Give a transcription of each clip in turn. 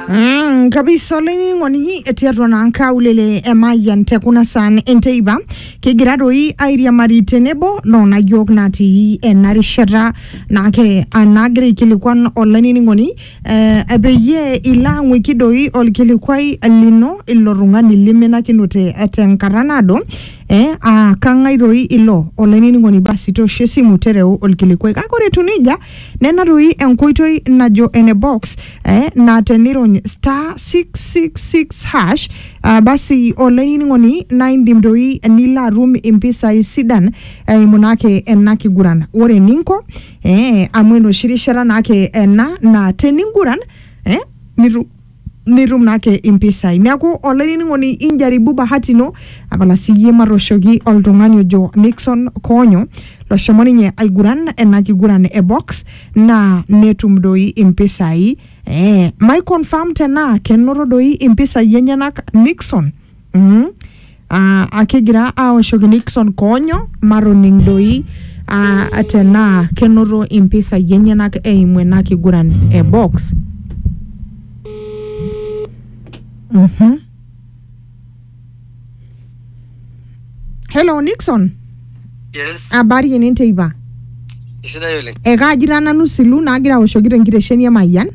Mm, kabisa olainining'oni etii atua naa nkaulele emayian te kuna saan enteipa kigira doi airiamari tenebo noona yiok natii ena rishata naake anaagira aikilikuan olainining'oni eh, peyie ilo ang'uiki doi olkilikuai lino ilo tung'ani liminakinote eh, tenkata naado eh, aa kang'ae doi ilo olainining'oni basi toosho esimu tereu olkilikuai kake ore etiu nejia Nena doi enkoitoi najo ene box eh, naa tenirony star 666 hash ah, basi olainining'oni naa indim doi nilo atum impisai sidan eimu naake ena kiguran. Ore eninko eh, amu enoshi rishata naake ena naa teninguran eh, nitu nitum naake impisai neaku olainining'oni injaribu bahati ino apala siyie matooshoki oltung'ani ojo Nixon Koonyo loshomo ninye aiguran ena kiguran e box naa netum doi impisai eh, mai confirm tenaa kenoto doi impisai enyenak Nixon mm. uh, akegira aoshoki Nixon Konyo matoning doi uh, tenaa kenoto impisai enyenak eimu ena kiguran e box. Mhm. Hello Nixon, Yes, habari ene teipa? isidai oleng. Ekaajita nanu silu naagira aoshoki tenkitesheni e Mayian.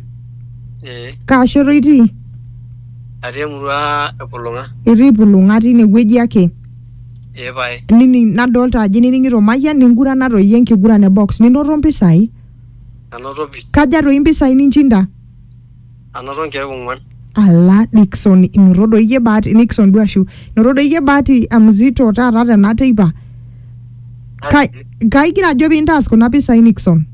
Eh, Kaa shoto itii? Atii emurua e Pulung'a. Itii Pulung'a tine wueji ake? Ee pae. Nining nadolta ajo inining'ito Mayian ningurana toi enkiguran e box ninoto mpisai? Anoto pii. Kaja toi mpisai ninchinda? Anoto nkeek ong'uan. Ala Dickson inoto doi iyie bahati, Nickson duo ashu. Inoto doi iyie bahati mzito taata tena teipa. Kai, kaigira ajo piintaas kuna pisai Nickson?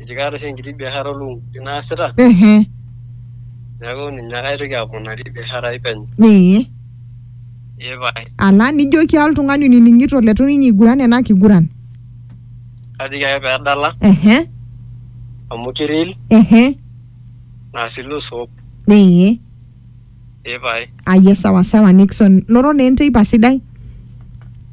eji kaata oshi enkiti biashara olukunkuni naasita ehe neeku ninye ake aitoki aponari biashara ai penyo ee ee pae ala nijoki oltung'ani onining'ito letu ninye iguran ena kiguran kajoki ake pedala ehe amu kiril ehe naa si lose hope ee ee pae aye sawa sawa nixon noro naa enteipa sidai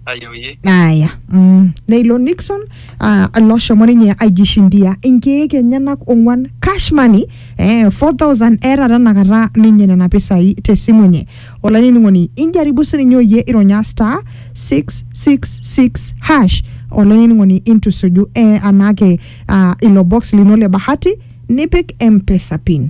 ayoyie aya mm. neilo nixon ah, loshomo ninye aijishindia inkeek enyenak ong'uan cash money eh, 4000 eeta tenakata ninye nena pisai tesimu enye olainining'oni injaribu sininye oyie ironya star 666 hash olainining'oni intusuju eh, anaake ah, ilo box lino le bahati nipik mpesa pin